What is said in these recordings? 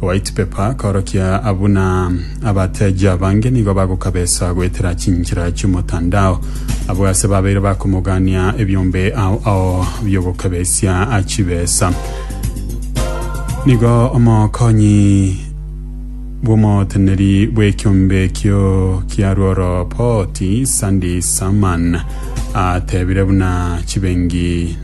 White Paper akorokia a buna abateji abange nigo bagokabesa goetera chinchera chi'omotandao. Abwo ase babeire bakomogania ebiombe ao ao biogokabesia chibesa. Nigo omokonyi bw'omoteneri bw'ekiombe ekio kia Rworo Port, Sandy Saman, atebire buna chibengi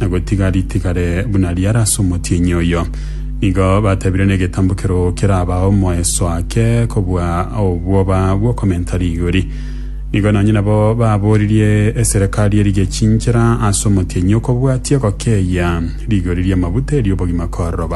na gotiga ritigare buna riare ase omotienyi oyo. Nigo batebire negetambukero keraba omoeso ake kobua obwoba bw'okomenta rigori. Nigo nonye nabo baboririe eserekari erigechinchere ase omotienyi okobwatia gokeyia rigori ri'amabuta eri'obogima kororoba.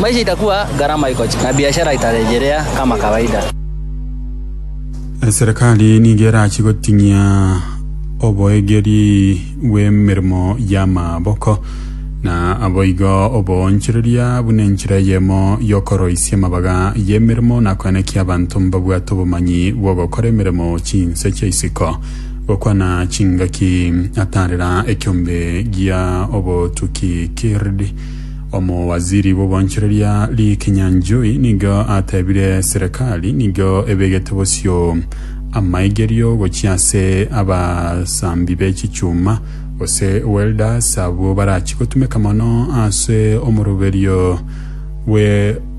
Maisha itakua garama ikochi, na biashara itaregerea kama kawaida. Eserekari nigo erachie goting'ia oboegeri bw'emeremo y'amaboko, na aboigo oboonchoreria buna enchera eyemo y'okoroisia amabaga y'emeremo na koenekia abanto mbabwate obomanyi bw'ogokora emeremo chinse chia isiko. Gokwana chingaki atarera ekiombe gia obotuki kird Omowaziri bw'obwanchoreria Lee Kinyanjui nigo atebire serekari nigo ebegete bosio amaigerio gochia ase abasambi be chichuma gose welders abwo barachi gotumeka mono ase omoroberio bwe